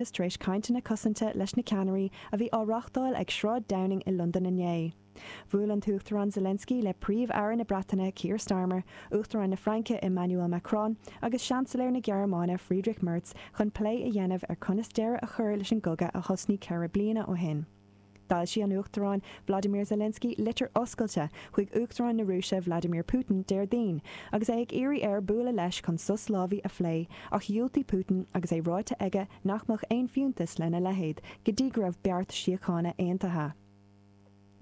Is tar éis cainteanna cosanta leis na ceannairí a bhí á reáchtáil ag Sráid Downing i Londain inné. Bhuail an tUachtarán Zelensky le Príomh-Aire na Breataine Keir Starmer, Uachtarán na Fraince Emmanuel Macron agus Seansailéir na Gearmáine Friedrich Merz chun plé a dhéanamh ar conas deireadh a chur leis an gcogadh a thosnaigh ceithre bliana ó shin. D'fhoilsigh an Uachtarán Volodymyr Zelensky litir oscailte chuig Uachtarán na Rúise Vladimir Putin Déardaoin agus é ag iarraidh air bualadh leis chun sos lámhaigh a phlé ach dhiúltaigh Putin agus é ráite aige nach mbeadh aon fiúntas lena leithéid go dtí go raibh beart síochána aontaithe.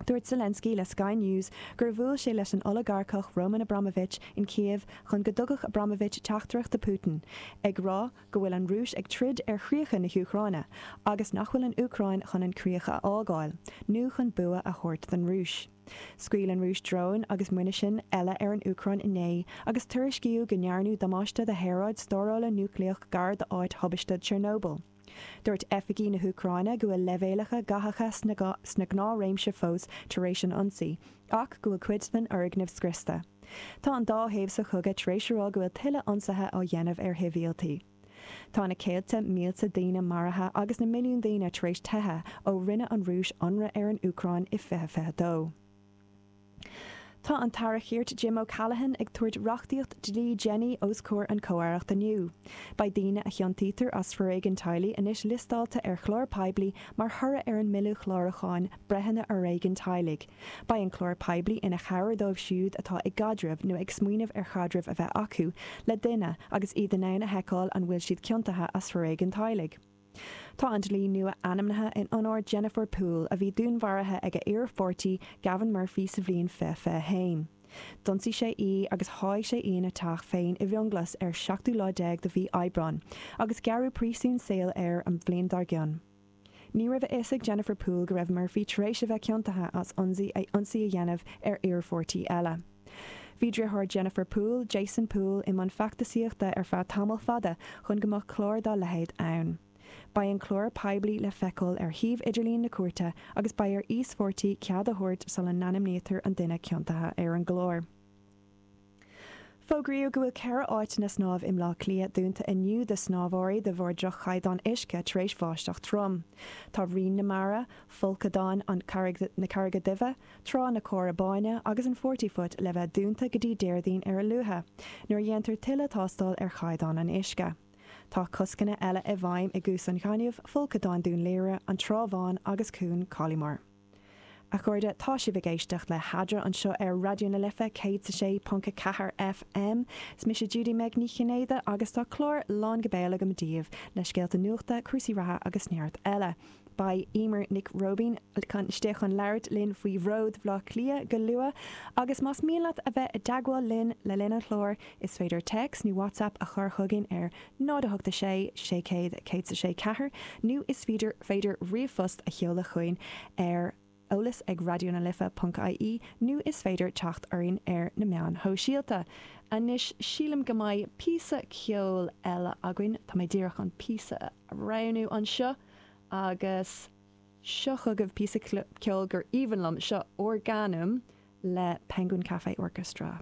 Dúirt Zelensky le Sky News gur bhuail sé leis an olagarcach Roman Abramovich in Kyiv chun go dtugfadh Abramovich teachtaireacht do Putin ag rá go bhfuil an Rúis ag troid ar chríocha na hÚcráine agus nach bhfuil an Úcráin chun an críoch a fhágáil nó chun bua a thabhairt don Rúis. Scaoil an Rúis dróin agus muinisin eile ar an Úcráin inné agus tuairiscíodh go ndearnadh damáiste do shaoráid stórála núicléach gar d'áit thubaiste Chernobyl. Dúirt oifigigh na hÚcráine go bhfuil leibhéalacha gathacha sa ghnáthréimse fós tar éis an ionsaí. ach go bhfuil cuid den fhoirgneamh scriosta. Tá an dá thaobh sa chogadh tar éis a rá go bhfuil tuilleadh ionsaithe á dhéanamh ar shibhialtaigh. Tá na céadta mílte daoine maraithe agus na milliúin daoine tar éis teitheadh ó rinne an Rúis ionradh ar an Úcráin i 2022. Tá an tAire Chirt Jim O'Callaghan ag tabhairt reachtaíocht dlí Jenny os comhair an Chomh-aireacht inniu. Beidh daoine a chiontaítear as foréigean teaghlaigh anois liostáilte ar chlár poiblí mar thoradh ar an mBille Chlárúcháin. breitheanna fhoréigin teaghlaigh. Beidh an clár poiblí ina chabhair dóibh siúd atá i gcaidreamh nó ag smaoineamh ar chaidreamh a bheith acu le duine agus iad in ann a sheiceáil an bhfuil siad ciontaithe as foréigean teaghlaigh. Tá an dlí nua ainmnithe in onóir Jennifer Poole, a bhí dúnmharaithe ag a hiarpháirtí Gavin Murphy sa bhliain 2021. D'ionsaigh sé í agus sháigh sé í ina teach féin i bhFionnghlas ar an seachtú lá déag de mhí Aibreáin, agus gearradh príosún saoil air an bhliain dár gcionn. Ní raibh a fhios ag Jennifer Poole go raibh Murphy tar éis a bheith ciontaithe as ionsaí a ionsaí a dhéanamh ar iarpháirtí eile. Bhí deartháir Jennifer Poole, Jason Poole, i mbun feachtasaíochta ar feadh tamall fada chun go mbeadh clár dá leithéid ann. Beidh an clár poiblí le feiceáil ar shuíomh idirlín na cúirte agus beidh ar íospháirtí cead a thabhairt sula n-ainmnítear an duine ciontaithe ar an gclár. Fógraíodh go bhfuil ceithre áiteanna snámh i mBleá Cliath dúnta inniu do shnámhóirí de bharr droch-chaighdeán uisce tar éis bháisteach throm. Tá Rinn na Mara, Folcadán na Carraige Duibhe, Trá na Cora Báine agus an Forty Foot le bheith dúnta go dtí Déardaoin ar a luaithe, nuair a dhéantar tuilleadh tástáil ar chaighdeán an uisce. Tá coscanna eile i bhfeidhm i gCuas an Ghainimh, Folcadán Dún Laoghaire, An Trá Bhán agus Cuan Coliemore. A chairde, tá sibh ag éisteacht le hAdhradh anseo ar Raidió na Life 106.4 FM. Is mise Judy Meg Ní Chinnéide agus tá clár lán go béal agam daoibh le scéalta nuachta, cúrsaí reatha agus neart eile. Beidh Eimear Nic Róibín istigh chun labhairt linn faoi Bhród Bhleá Cliath go luath agus más mian leat a bheith i dteagmháil linn le linn an chláir is féidir téacs nó WhatsApp a chur chugainn ar 0 8 6 6 0 100 is a sé ceathair nó is féidir ríomhphost a sheoladh chugainn ar eolas ag raidió na life ponc ie nó is féidir teacht orainn ar na meáin shóisialta. Anois sílim go mbeidh píosa ceoil eile againn. Tá mé díreach an píosa a roghnú anseo agus seo chugaibh píosa ceoil gur aoibhinn liom. Seo Organum le Penguin Cafe Orchestra.